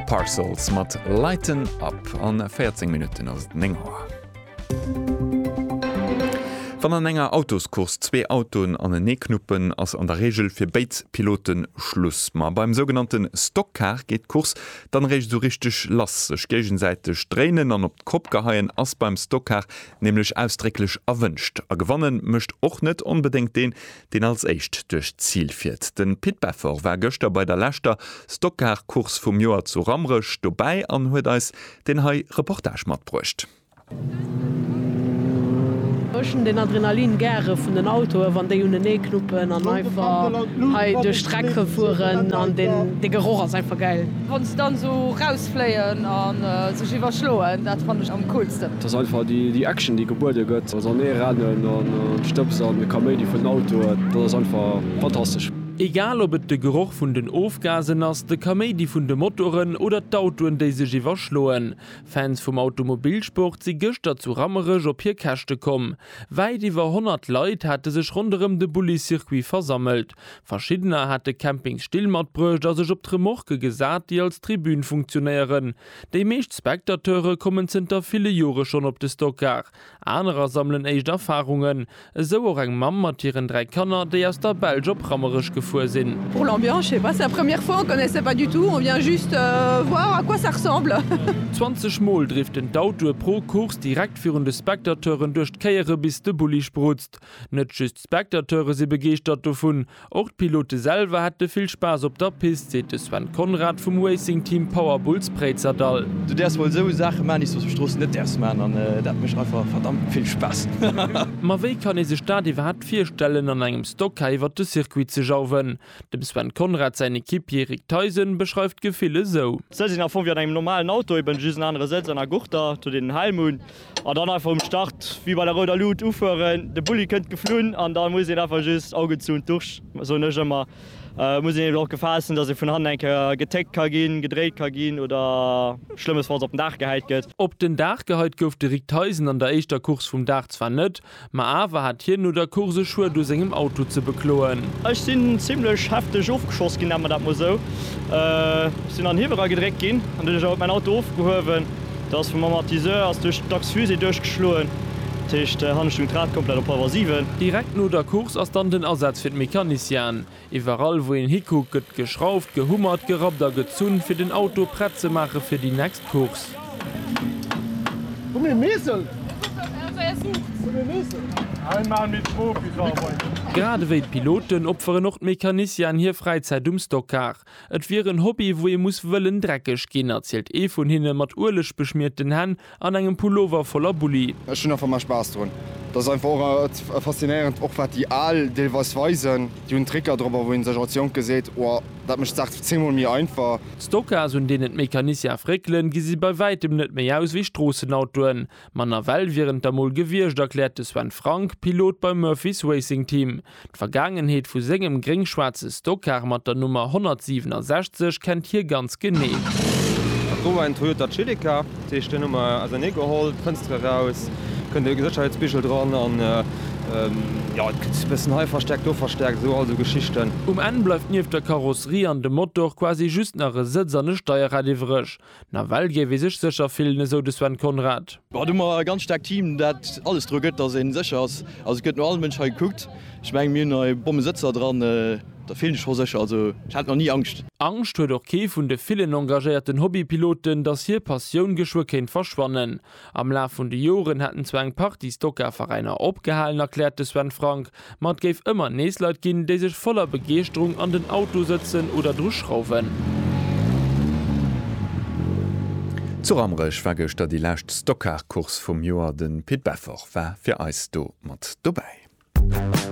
Parcels mat Lighten Up an 14 Minutten ass et 9 Auer. Wann an enger Autoscourse zwee Autoen anenee knuppen, ass an der Reegel fir béid Pilote Schluss. Ma beim sougenannte Stockcar geet d'Course dann eréischt esou richteg lass. Sech géigesäiteg dréinen an op d'Kopp geheien ass beim Stockcar nämlech ausdrécklech erwënscht. A gewannen mécht och net onbedéngt deen, deen als éischt duerch d'Zil fiert. De Pit Beffort war gëschter bei der leschter Stockcar-Course vum Joer zu Rammerech dobäi an huet eis deen hei Reportage matbruecht. Ech hunn den Adrenalin gäre vun den Autoe wann déi unenee knuppen an einfach hei duerch d'Streck fueren an de Geroch ass einfach gäil. Fléien a sech iwwerschloen, dat fannen ech am coolsten. Et ass einfach déi Action, déi gebuede gëtt, also an ee rennen an d'Stëbs an de Kaméidi vun den Autoen, dat ass einfach fantastesch. Egal ob et de Geroch vun den Ofgasen ass, de Kaméidi vun de Motoren oder d'Autoen, déi sech iwwerschloen, Fans vum Automobilsport si gëschter zu Rammerech op hir Käschte komm. Wäit iwwer 100 Leit hate sech ronderëm de Bulli-Circuit versammelt. Verschiddener hat de Camping Still matbruecht a sech op d'Remorque gesat, déi als Tribün funktionéieren. Déi meescht Spectateure kommen zënter ville Jore schonn op de Stockar, anerer sammelen éischt Erfarungen. Esou och eng Mamm mat hiren dräi Kanner, déi aus der Belsch op Rammerech gefuer sinn. Pour l'ambiance, je sais pas, c'est la première fois, on connaissait pas du tout, on vient juste voir à quoi ça ressemble. 20 mol driften d'Autoe pro Course direkt virun de Spectateuren duerch d'Kéiere bis de Bulli sprutzt. Net just D'Spectateure si begeeschtert dovun. Och d'Pilote selwer hätte vill Spaass op der Pist, seet de Sven Conrad vum Racing Team Power Bulls Préizerdahl. Du däerfs mol esou Saache maan, déi s du op der Strooss net däerfs maan an dat mécht einfach verdammt vill Spaass. Ma wéi kann ee sech dat iwwerhaapt virstellen an engem Stocker iwwert de Circuit ze jauwen? Dem Sven Conrad säin Equipier Rick Theisen beschreift d'Gefill esou. D'Sëtz sinn am Fong wéi an engem normalen Auto, eben just en anere Sëtz an a Gurter, datt een en Helm hunn. An dann einfach um Start wéi bei der rouder Luut ufueren. De Bulli kënnt geflunn an da muss een einfach just Augen zu und durch, soen ech ëmmer. Et muss een eben och Gefahr essen, dass ee vun hannen eng Kéier getéckt ka ginn, gedréit ka ginn oder schlëmmesfalls op den Daach gehäit gëtt. Op den Daach gehäit gouf de Rick Theisen an der éischter Course vum Dag zwar net, Ma awer hat hien no der Course e Schued u sengem Auto ze bekloen. Ech sinn zimlech hefteg ofgeschoss ginn, nennen mer dat mol esou. Ech sinn an den Hiewel eragedréckt ginn an duerch dat ass mäin Auto ofgehuewen. Da ass vum Amortisseur ass duerch d'Achs-fusée duerchgeschloen. Dat heescht, han ech dunn d'Rad komplett op Halwer siwen. Direkt no der Course ass dann den Asaz fir d'Mecaniciene. Iwwerall wou een hikuckt gëtt geschrauft, gehummert, gerappt a gezunn fir den Auto prett ze maache fir déi nächst Course. Grad ewéi d'Piloten opferen och d'Mecanicianen hir Fräizäit um Stockcar. Et wier en Hobby wou ee muss wëllen dreckeg ginn, erzielt ee vun hinne mat Ueleg beschmierten Hänn. An engem Pullover voller Bulli. Ech hunn einfach mei Spaass drun. Dat ass einfach och et faszinéierend, och wat déi Al deelweis weisen. Déi hunn Tricker drop, wou een sech als Jonke seet, Oa, dat mécht d'Saach zehnmol méi einfach. D'Stocas, un deenen d'Mécaniciens fréckelen, gesi bei wäitem net méi aus wéi Stroossenautoen. Manner well wieren et der mol gewiescht, erkläert de Sven Frank, Pilot beim Murphys Racing Team. D'Vergaangenheet vu sengem gréng-schwaarze Stockcar mat der Nummer 167 kennt hie ganz genee. Dat wor en Toyota Celica, dat heescht deen hu mer ausernee geholl, d'Fënster eraus, kënnt e Sécherheetsbigel dran an jo et gëtt e bëssen hei verstärkt, do verstärkt, esou all esou Geschichten. Um Enn bleift nieft der Karosserie an dem Motor quasi just nach e Sëtz an e Steierrad iwwreg. Nawell géif ee sech sécher fillen, esou de Sven Conrad. Ech hunn emmer e ganz staarkt Team, dat alles dru gëtt, datt ee sécher ass. Also et gëtt no all Mënsch hei gekuckt. Ech mengen, mir hunn hei Bommesëtzer dran. Da fillen ech scho sécher. Also ech hat nach ni Angscht. Angscht huet och kee vun de villen engagéierten Hobbypiloten, datt hir Passioun geschwë kéint verschwannen. Am Laf vun de Joren hätten zwar eng Partie Stoka-Veräiner opgehalen, erkläert de Sven Frank, ma et géif ëmmer nees Leit ginn, déi sech voller Begeeschterung an den Auto sëtzen oder dru schrauwen. Zu Rammerech war gëschter déi lescht Stockcar-Course vum Joer. De Pit Beffort war fir eis do mat dobäi.